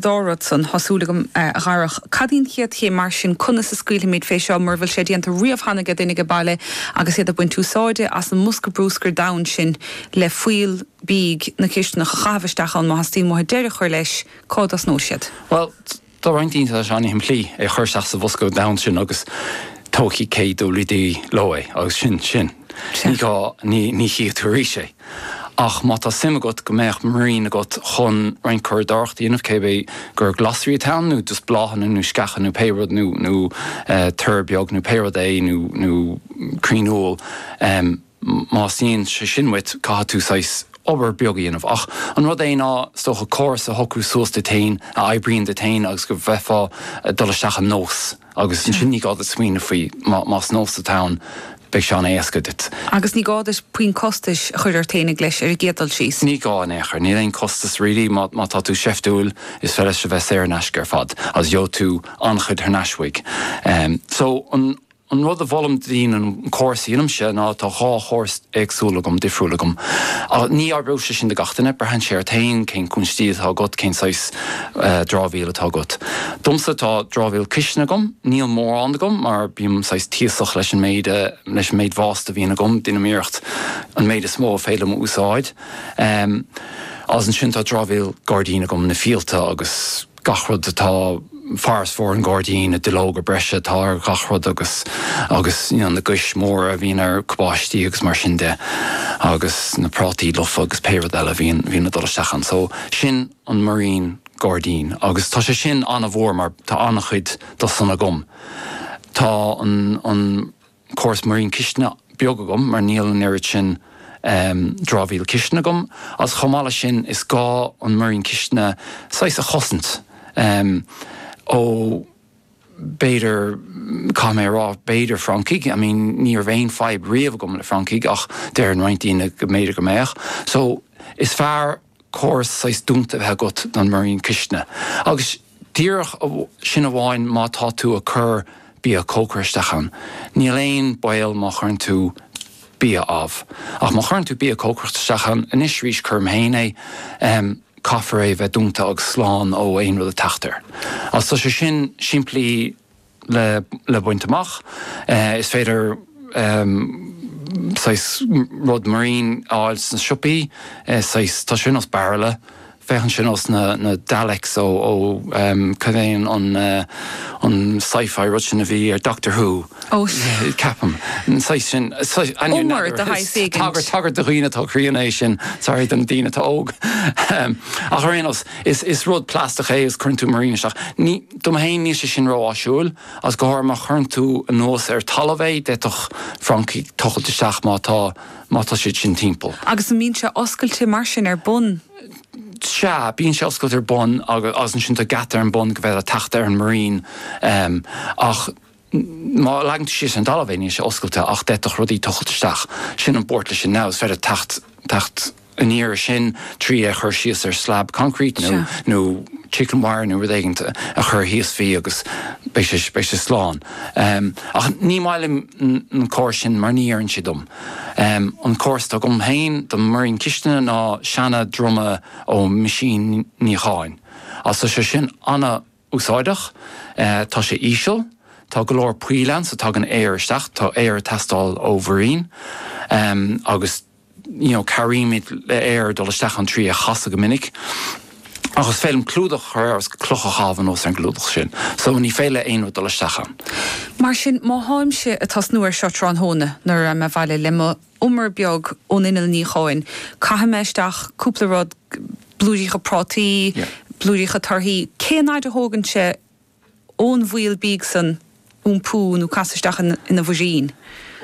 dhá rud san. Tá súil agam, a Dharach. Cad í an chéad chéim mar sin? Conas a scaoilfimid fé seo mura bhfuil sé déanta riamh cheana ag duine aige baile agus iad ag baint úsáide as an mbosca bruscair donn sin le fuíoll bídh na cistineach a chaitheamh isteach ann. Má theastaíonn uathu deireadh a chur leis, cá dtosnóidh siad? Bhuel, do roinnt daoine tá sé an-simplí é a chur isteach sa bhosca donn sin agus tógfaidh KWD leo é agus sin sin. Ní gá, ní chífidh tú arís é. Ach má tá suim agat go mbeadh múirín agat chun roinnt curadóireacht a dhéanamh, cibé gur glasraí atá ann, nó just bláthanna nó sceacha nó pé rud, nó nó tor beag nó pé rud é, nó nó crainn úll, má theastaíonn sé sin uait, caithfidh tú saghas obair beag a dhéanamh. Ach an rud é ná, is dócha, córas a shocrú suas duit féin, a oibríonn duit féin agus go bhféadfá dul isteach i nós. Agus ansin ní gá duit smaoineamh faoi, más nós atá ann, beidh sé an-éasca duit. Agus ní gá duit puinn costais a chur ort féinig leis, ar an gcéad dul síos. Ní gá in aon chor. Níl aon costas really, má tá tú seiftiúil, is féidir leis a bheith saor in aisce ar fad, agus gheobhaidh tú an-chuid thar n-ais uaidh. So, an rud a mholaim do dhaoine, an córas a dhéanaimse, ná, tá dhá chóras, éagsúil agam, difriúil agam. Ach ní oibreoidh sé sin do gach duine. Braitheann sé ort féin cén cúinsí atá agat, cén saghas dramhaíl atá agat. Domsa tá dramhaíl cistine agam. Níl mórán agam mar bím saghas tíosach leis an méid a, leis an méid waste a bhíonn agam, deinim iarracht an méid is mó is féidir liom a úsáid. Agus ansin tá dramhaíl gairdín agam, na fiailte agus. gach rud atá farasbarr an ghairdín, na duilleoga breise atá ar gach rud agus agus you know na gais mhóra a bhíonn ar cabáistí agus mar sin de agus na prátaí lofa agus pé rud eile a bhíonn bhíonn ag dul isteach ann. So sin an múirín gairdín agus tá sé sin an-mhór mar tá an-chuid do san agam. Tá an an. córas múirín cistine beag agam mar níl an oiread sin dramhaíl cistine agam agus chomh maith leis sin is gá an múirín cistine saghas a chosaint ó b'fhéidir caithfidh mé a rá b'fhéidir francaigh I mean ní raibh aon fadhb riamh agam le francaigh ach deireann roinnt daoine go mb'fhéidir go mbeadh so is fearr córas saghas dúnta a bheith agat don múirín cistine, agus díreach sin amháin má tá tú ag cur bia cócaire isteach ann, níl aon baol má chuireann tú bia amh, ach má chuireann tú bia cócaireacht isteach ann, anois arís cuirim féin é, caithfear é a bheith dúnta agus slán ó aon rud ag teacht air. Tá sé sin simplí. le baint amach. Is féidir saghas rud múirín a fháil sna siopaí, saghas, tá sé ar nós bairille, féachann sé ar nós na Daleks ó, cad é an sci-fi rud sin a bhí ar Doctor Who, ceapaim, an saghas sin, umar de shaghas éigint. Tagairt do dhaoine atá críonna é sin, sorry, do na daoine atá óg, ach ar aon nós, Is rud plastach é agus cuireann tú múirín isteach. Dom fhéin níl sé sin ró áisiúil agus go háirithe má chuireann tú anuas ar talamh é, d'fhéadfadh francaigh tochailt isteach má tá má tá siad sin timpeall. Agus an mbíonn sé oscailte mar sin ar bun? Sea, bíonn sé oscailte ar bun agus ansin tá geata ar an bun go bhféadfá teacht ar an múirín ach. Má leagann tú síos ar an dtalamh é, níl sé oscailte ach d'fhéadfadh rudaí tochailt isteach. Sin an buairt leis sin now, is féidir teacht teacht aniar ar sin trí é chur síos ar slab concrete nó nó chicken wire nó rud éigin a chur thíos faoi agus beidh sé beidh sé slán. Ach ní maith liom an córas sin mar ní oireann sé dom. An córas atá agam féin don múirín cistine ná seana druma ó mheaisín níocháin. Tá sé sin ana úsáideach. Tá sé íseal, tá go leor poill ann so tagann aer isteach, tá aer ag teastáil ó mhúirín agus you know cabhraímid le aer dul isteach ann trí é a chasadh go minic ach is féidir liom clúdach a chur air agus cloch a chaitheamh anuas ar an gclúdach sin so ní féidir le aon rud dul isteach ann. Mar sin má tháimse ag tosnú ar seo tráthnóna nuair a raghaidh mé abhaile le mo umar beag ón inneall níocháin, caithfidh mé isteach cúpla rud, blúiríocha prátaí, blúiríocha torthaí, cén fhaid a thógann sé ón bhfuíoll bídh san iompú nó casadh isteach ina mhúirín?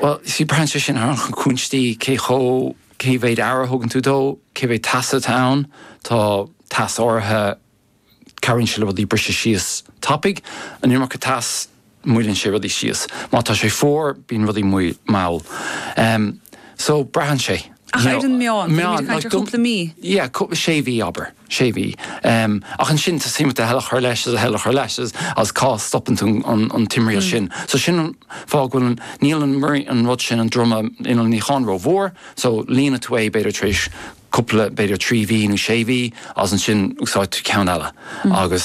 Bhuel, you see, braitheann sé sin ar na cúinsí, cé chomh, cé mhéid aire a thugann tú dó, cé mhéid teasa atá ann, tá teas áirithe cabhraíonn sé le rudaí briseadh síos tapaidh. An iomarca teas, moilleann sé rudaí síos. Má tá sé fuar, bíonn rudaí mall. So, braitheann sé. Ach ar an meán, bímid ag caint ar chúpla mí? Yeah, sé mhí abair, sé mhí. Ach ansin teastaíonn uait a thuilleadh a chur leis, a thuilleadh a chur leis agus cá stopann tú an timthriall sin. So sin an fáth go bhfuil an, níl an rud sin, an druma innill níocháin ró mhór, so líonann tú é b'fhéidir tar éis cúpla, b'fhéidir trí mhí nó sé mhí, agus ansin úsáideann tú ceann eile agus.